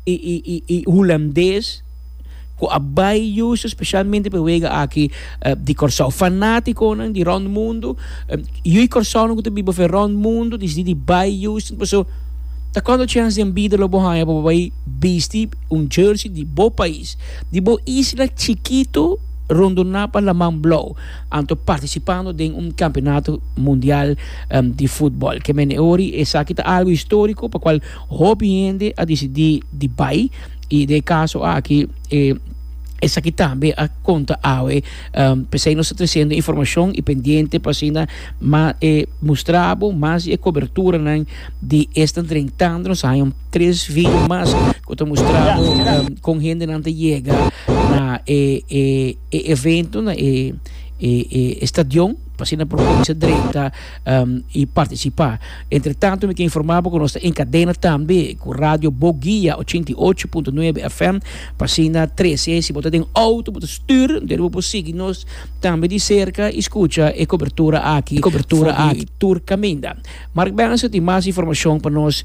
i hulandes ku a bai yusu spesialmente pa e wega aki di Kòrsou. Fanátikonan di rònt mundu, yu i kòrsounan ku ta biba afuer rònt mundu disidí di bai yusu. Paso, ta konta chèns den bida lo bo haña pa bo bai bisti un jersey di bo pais, di bo isla chikitu rondoná pa laman blou, anto partisipando den un kampionato mundial di futbòl. Ke mene ori esaki ta algu historiko pa kual. Hopi hende a disidí di bai i den e kaso aki e esaki tambe a konta awe. P'esei nos ta tresiendo informashon i pendiente pa asina mas e mustra bo mas di e koberturanan di Están Drentando. Nos a haña un tres video mas ku ta mustra bo kon hendenan ta yega na e e evento na e e stadion pa asina por kuminsá drenta. um, y participa. Entre tanto, mi ta informa bo cu nos ta en cadena tambe cu Radio Boguia 88.9 FM, Pasina 13. Si bo ta den auto, bo ta stuur, deri bo por sigui nos tambe di cerca y scucha e cobertura aki, cobertura aki tur caminda. Mark Benson tin mas informacion pa nos.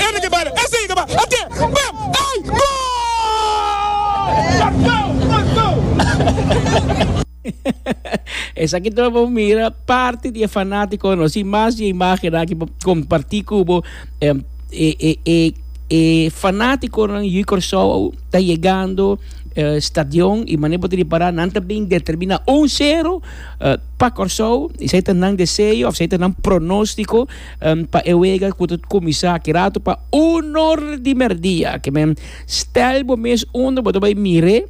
Ene ke bala, esei ke ba ate bem ey goal! Esaki tur bo mira parti di e fanatico no si mas di e imagen aki bo comparti cu bo e e e e fanatico no yu Kòrsou au ta yegando uh, stadion i mane bo te ripara nan ta bin determina un sero uh, pa Kòrsou i sai ta nan deseo of sai ta nan pronostico Pa e wega ku ta kuminsá kirato pa uno di mèrdia, ke men stèl bo mes unda bo ta bai mir'é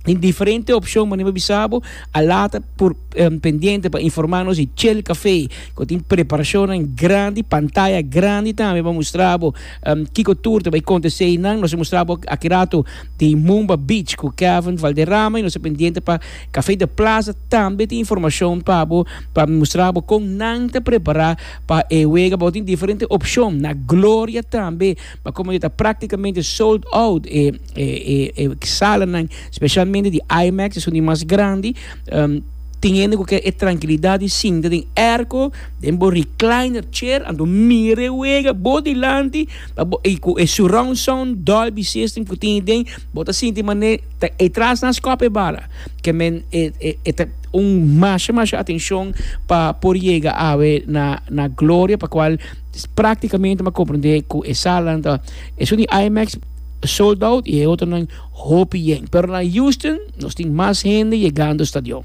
di diferente opshon manier bo bisa bo a lata por pendiente pa informá nos di Chel Kafé ku tin preparashonnan grandi, pantaya grandi tambe pa mustra bo kiko tur ta bai kontesé einan. Nos a mustra bo a kirato di Mumba Beach ku Kevin Valderrama i nos ta pendiente pa. Café de Plaza tambe tin informacion pa bo pa mustra bo con nan ta prepara pa e wega. Bo tin diferente opcion. Na Gloria tambe pa como e ta practicamente sold out e e salanan specialmente di IMAX esun di mas grandi. Tin hende cu kier e trankilidad di sinta den airco den bo recliner chair anto mira e wega bo dilanti y cu e surround sound dolby system cu tin aden Bo ta sinti manera ta e tras nan skop e bala ke men e e ta un masha masha atenshon pa por yega awe na na gloria pa kual praktikamente m'a komprendé ku e salanan ta esun di IMEX sold out i e otronan hopi yen pero na Houston nos tin mas hende yegando stadion.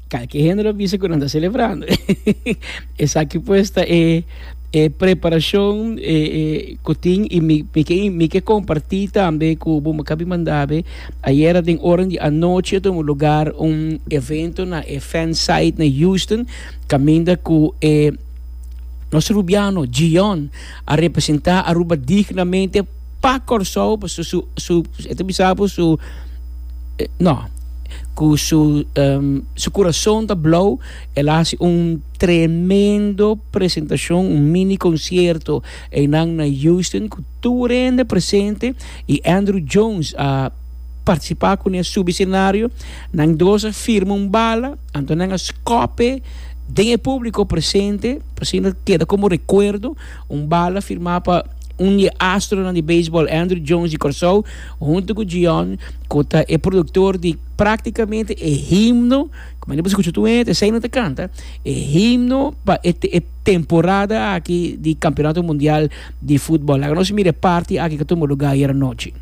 Ka ke hende lo bisa ku nan ta selebrando. Esaki pues ta e e preparashon e e ku tin i mi mi ke mi ke kompartí tambe ku bo makabi mandabe ayera den ora di anochi tomo lugar un evento na e fan site na Houston kaminda ku e nos Rubiano Gion a representá Aruba dignamente. Pa Kòrsou pasobra su su e ta bisa bo su no ku su su kurason ta blou el a hasi un tremendo presentashon un mini konsierto einan na Houston ku tur hende presente i Andruw Jones a partisipa kuné a subi senario nan dos a firma un bala anto nan a skòp'e den e públiko presente asina keda komo rekuerdo. Un bala firmá pa un di e astronan di beisbòl Andruw Jones di Kòrsou huntu ku Jiyon ku ta e produktor di práktikamente e himno, kuma no por skucha tur hende esei nan ta kanta, e himno pa e e temporada aki di Kampionato Mundial di Futbòl. Laga nos mira e parti aki ku a tumba lugá ayer anochi.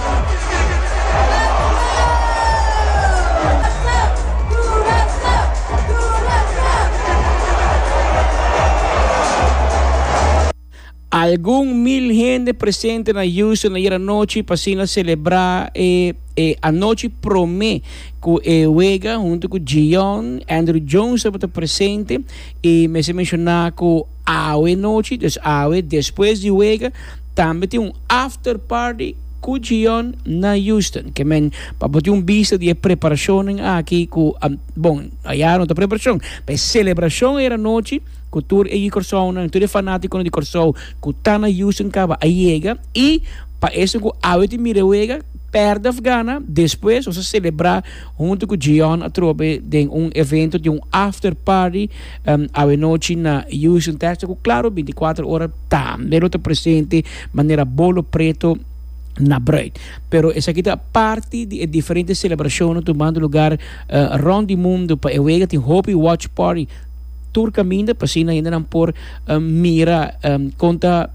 Algun mil hende presente na Houston ayer anochi pa asina celebra e, e anochi prome cu e wega hunto cu Gion Andrew Jones tabata presente y mester menciona cu Awe nochi, des awe despues di wega, tambe tin un after party ku Gion na Houston. Ke men, pa bo tin un bista di e preparashonnan aki ku, bon, ayara no ta preparashon, pa e selebrashon ayera nochi ku tur e Corsonan, tur e fanatikonan di Kòrsou ku ta na Houston kaba a yega i pa esnan ku awe tin mira e wega, pèrdè òf gana, despues nos a selebrá. Hunto cu Jion atrobe den un evento di un after party awe nochi na Houston, Texas, cu claro binticuater ora tambe lo ta presente manera bolo preto na bruid. Pero esaki ta parti di e diferente celebracionnan tumando lugar rond di mundo. Pa e wega tin hopi watch party tur caminda pa asina hendenan por mira con ta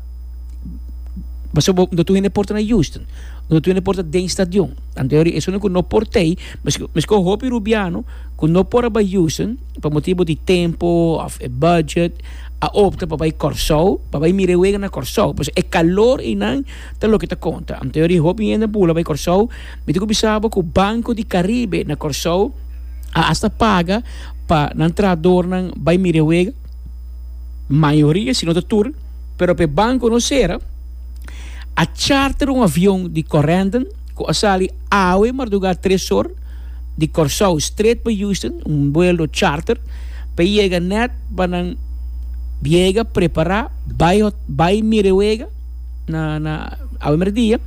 pasobra no tur hende por ta na Houston, no tur hende por ta den stadion. Anto eri esun ku no por tei, meskos hopi rubiano ku no por a bai Houston pa motibu di tempo òf e budget, a opta pa bai Kòrsou pa bai mira e wega na Kòrsou. Por eso e kalor einan ta loke ta konta. Anto eri hopi hende a bula bai Kòrsou. Mi ta ku bisa bo ku Banco di Caribe na Kòrsou a asta paga pa nan trahadornan bai mira e wega. Mayoria sino ta tur, pero pa e bankonan sera a charter un avion di Corendon. cu a sali awe marduga tres or di Corsou straight pa Houston, un vuelo charter, p'e yega net pa nan yega, prepara, bai ho, bai mira e wega na, na awe merdia.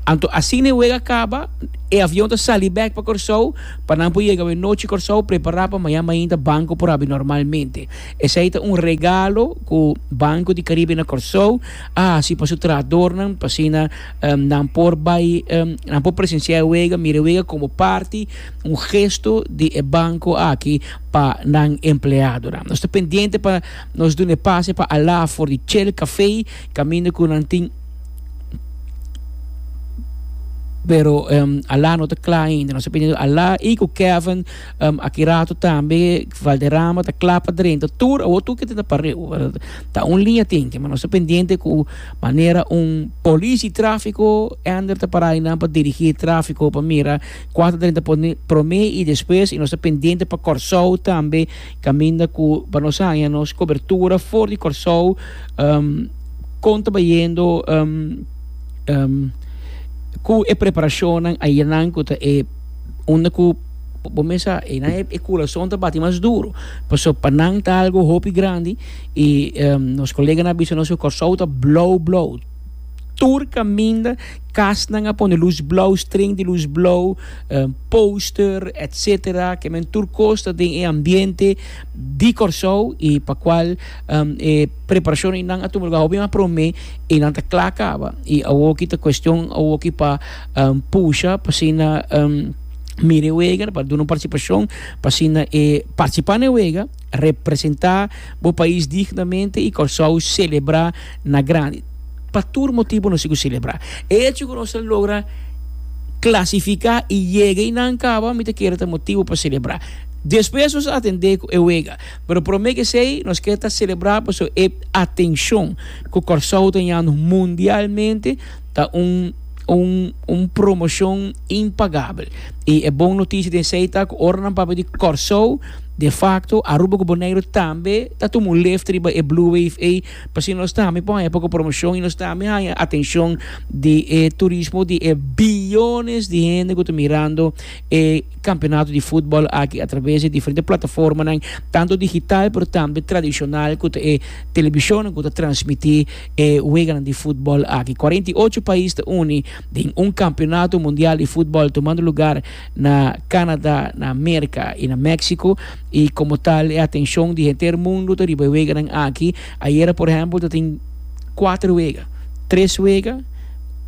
Anto asina e wega caba, e avion ta sali bek pa Corsou, pa nan por yega awe nochi Corsou, prepara pa mañan mainta banco por abi normalmente. Esai ta un regalo cu Banco di Caribe na Corsou. a hasi pa su trahadornan pa asina nan por bai nan por presenciá e wega, mira e wega komo parti un gesto di e banko aki pa nan empleadonan. Nos ta pendiente pa nos duna e pase pa alá for di Chel Café kaminda ku nan tin pero alá no ta kla ainda. Nos ta pendiente alá i ku Kevin. Um, aki rato tambe Valderrama ta kla pa drenta tur awor tur kende ta pareu. Ta un liña tenke, ma nos ta pendiente ku manera un polisi tráfiko Ander ta pará einan pa dirigí e tráfiko pa mira kua ta drenta promé i despues i nos ta pendiente pa Kòrsou tambe kaminda ku pa nos haña nos kobertura for di Kòrsou um kon ta bayendo um um ku e preparashonnan ayenan ku ta e unda ku. Bo mesa einan e kurason ta bati mas duru, pasobra pa nan ta algu hopi grandi, i nos koleganan a bisa nos ku Kòrsou ta blou blou, tur kaminda kasnan a pone lus blou, streng di lus blou, póster etsetera, ke men tur kos ta den e ambiente di Kòrsou i pa kual e preparashon einan a tuma luga hopi mas promé, einan ta kla kaba i awoki ta kuestion awoki pa pusha pa asina. Mira e wega, pa duna un participacion, pa asina e participa na e wega, representa bo pais dignamente y Kòrsou celebra na grandi. Pa tur motibonan nos sigu celebra. E hecho cu nos a logra clasifica y yega y nan caba, mi ta kere ta motibo pa celebra. Despues nos a atende cu e wega, pero prome kesey nos kier ta celebra pasobra e atencion cu Kòrsou ta hañando mundialmente, ta un, un, un promoshon impagabel. I e bon notishi den esei ta ku ora nan papia di Kòrsou, de fakto Aruba ku Boneiru tambe ta tuma un lef riba e Blue Wave ei, pasobra nos tambe por haña poco promoshon i nos tambe haña atenshon di e turismo di e biyones di hende ku ta mirando e kampionato di futbòl aki atraves di e diferente plataformanan, tantu digital pero tambe tradishonal ku ta e telebishonnan ku ta transmití. E weganan di futbol aki. Cuarenta i ocho pais ta uni den un campeonato mundial di futbol tumando lugar na Canada, na Merca y na Mexico. Y como tal e atencion di henter mundo ta riba e weganan aki. Ayera por ehempel ta tin cuatro wega, tres wega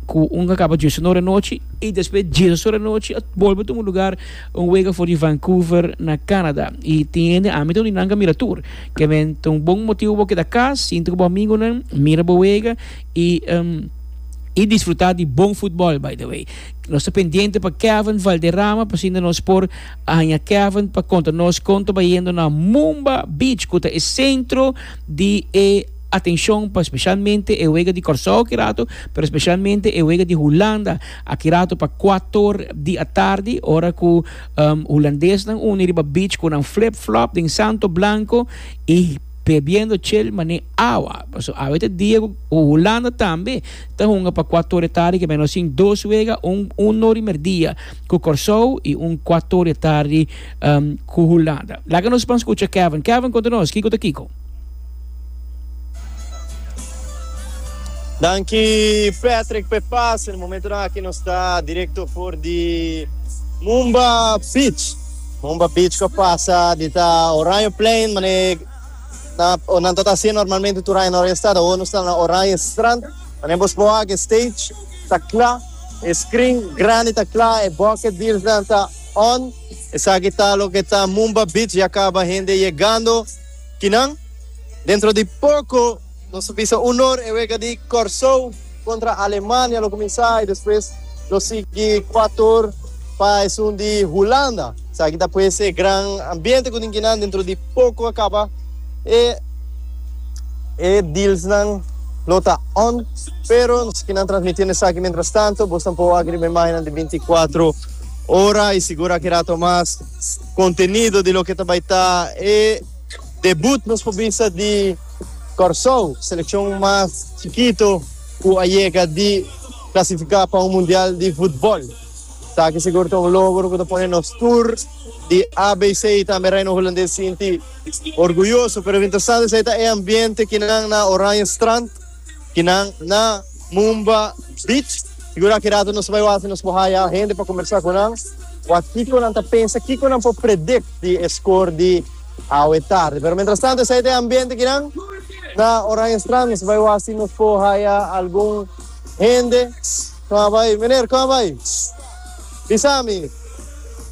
cu un a caba diesora de nochi y despues diesas ora de nochi a bolbe tuma lugar un wega for di Vancouver na Canada. Y tin hende ami ta uni nan ca mira tur. Ke men ta un bon motibu bo keda kas si entre bo amigunan, mira bo wega i i disfruta di bon futbol by the way. Nos ta pendiente pa Kevin Valderrama pasinda nos por haña Kevin pa konta nos kon ta bayendo na Mumba Beach ku ta e sentro di e atenshon pa speshalmente e wega di Kòrsou kirato pero speshalmente e wega di Hulanda akirato pa kuator di atardi ora ku Hulandesnan uni riba beach cu nan flip-flop den santo blanco y bebiendo chel mane awa. Paso awe ta dia cu Hulanda tambe ta hunga pa cua toria tardi ke menos sin dos wega, un un no rimer dia cu Corsou y un cua toria tardi cu Hulanda. Laga nos ban scucha Kevin. Kevin, conta nos kico ta kico? Danki Patrick p'e pase. Na momentonan aki nos ta directo for di Mumba Beach. Mumba Beach cu pasa di ta Oranje Plein, mane na, o nan ta ta hacía normalmente tur aña na ora e stad, awor nos ta na Oranje Strand. Mane bo spua aki e stage ta cla, e screen grandi ta cla, e bucket deals nan ta on. Esaki ta loke ta Mumba Beach, ya caba hende yegando. Kinan? Dentro di poko nos ta bisa unor e wega di Kòrsou kontra Alemania lo kuminsá i despues lo sigui kua tur pa esun di Hulanda. Esaki ta pues e gran ambiente ku tin kinan dentro di poko a kaba e e dealsnan lo ta on pero nos kinan transmitiendo esaki mientras tanto bos tampo wak riba e imagennan di binti kuatro ora i sigur aki rato mas contenido di loke ta bay ta e debut nos por bisa di Corsou, seleccion mas chikito cu a yega di clasifica pa un mundial di futbol. Esaki sigur ta un logro cu ta pone nos tur di ABC y tambe Reino Hulandes sinti orguyoso, pero lo interesante esei ta e ambiente kinan na Oranjestrand. kinan na Mumba Beach. Sigura ki rato nos bai wak nos por haya hende pa kombersa ku nan, wak kiko nan ta pensa, kiko nan por predikt di e skor di awe tardi. Pero mientras tanto esei ta e ambiente kinan na Oranjestran. Nos bai wak si nos por haya algun hende. Koma bai, meneer, koma bai? Bisa mi,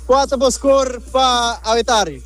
kua ta bo skor pa awe tardi?